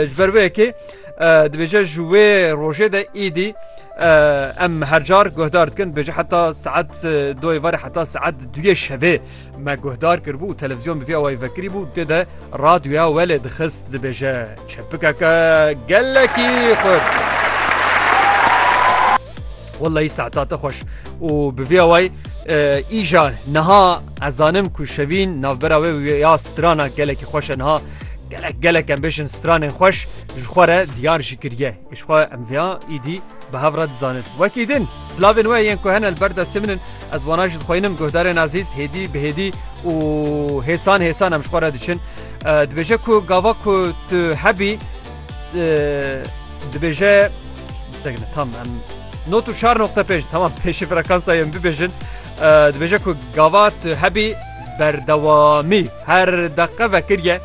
Ji ber wê yekê dibêje ji wê rojê de îdî em her car guhdar dikin dibêje heta saet doyê varê heta saet duyê şevê me guhdar kiribû televizyon bi vê awayî vekirî bû tê de radyoya welê dixist dibêje çepikeke gelekî xurt. Wellahî saeta te xweş û bi vê away îja niha ez zanim ku şevîn navbera wê ya strana gelekî xweş e niha gelek gelek em bêjin stranên xweş ji xwe re diyar jî kiriye xwe em vêya îdî bi hev re dizanin wekî din slavên we yên ku hene li ber destê min in ez wana ji dixwînim guhdarên ezîz hêdî bi hêdî û hêsan hêsan em ji xwe re diçin dibêje ku gava ku tu hebî dibêje Segine tam em not û çar noqte pêş tamam pêşî frekansayê em bibêjin dibêje ku gava tu hebî berdewamî her deqe vekiriye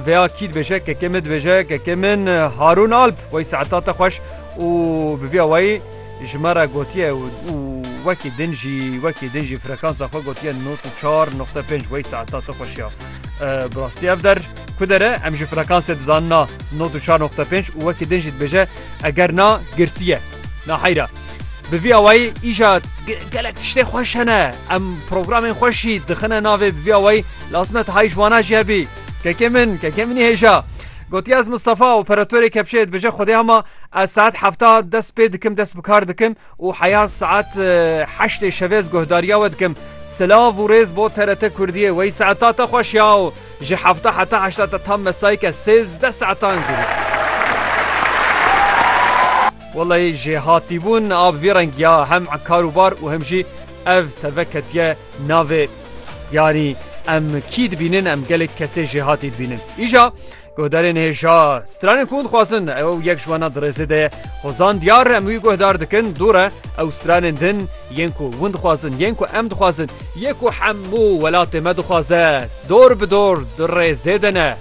veya kî dibêje kekê min dibêje kekê min Harûn Alp wey saeta te xweş û bi vîya wayî ji me re gotiye û wekî din jî wekî din jî frekansa xwe gotiye not û çar noqte pênc wey saeta te xweşiya bi rastî ev der ku dere em ji frekansê dizanina not û çar noqte pênc û wekî din jî dibêje Eger na, girtiye. Na heyra. Bi vî awayî îja gelek tiştê xweş hene. Em programên xweş jî dixine navê bi vî awayî lazim e tu heyî ji wana jî hebî. Kekê min, kekê minî hêja. Gotiye ez Mistefa operatorê kepçeyê dibêje xwedê hema ez saet hefta dest pê dikim dest bi kar dikim. û heya saet heştê şevê ez guhdariya we dikim. Silav û rêz bo TRT Kurdiyê. Wey saeta te xweş ya û ji hevta heta heşta te tam mesayî ke sêzdeh saetan jî. Wellahî ji hatîbûn a bi vî rengî ya hem kar û bar û hem jî ev teve ketiye navê yanî em kî dibînin em gelek kesê jêhatî dibînin. Îja Guhdarên hêja stranên ku dixwazin ew yek ji wana dirêzê de ye. Xwezan diyar em wî guhdar dikin dû re ew stranên din yên ku hûn dixwazin yên ku em dixwazin yê ku hemû welatê me dixwaze dor bi dor dirêzê de ne.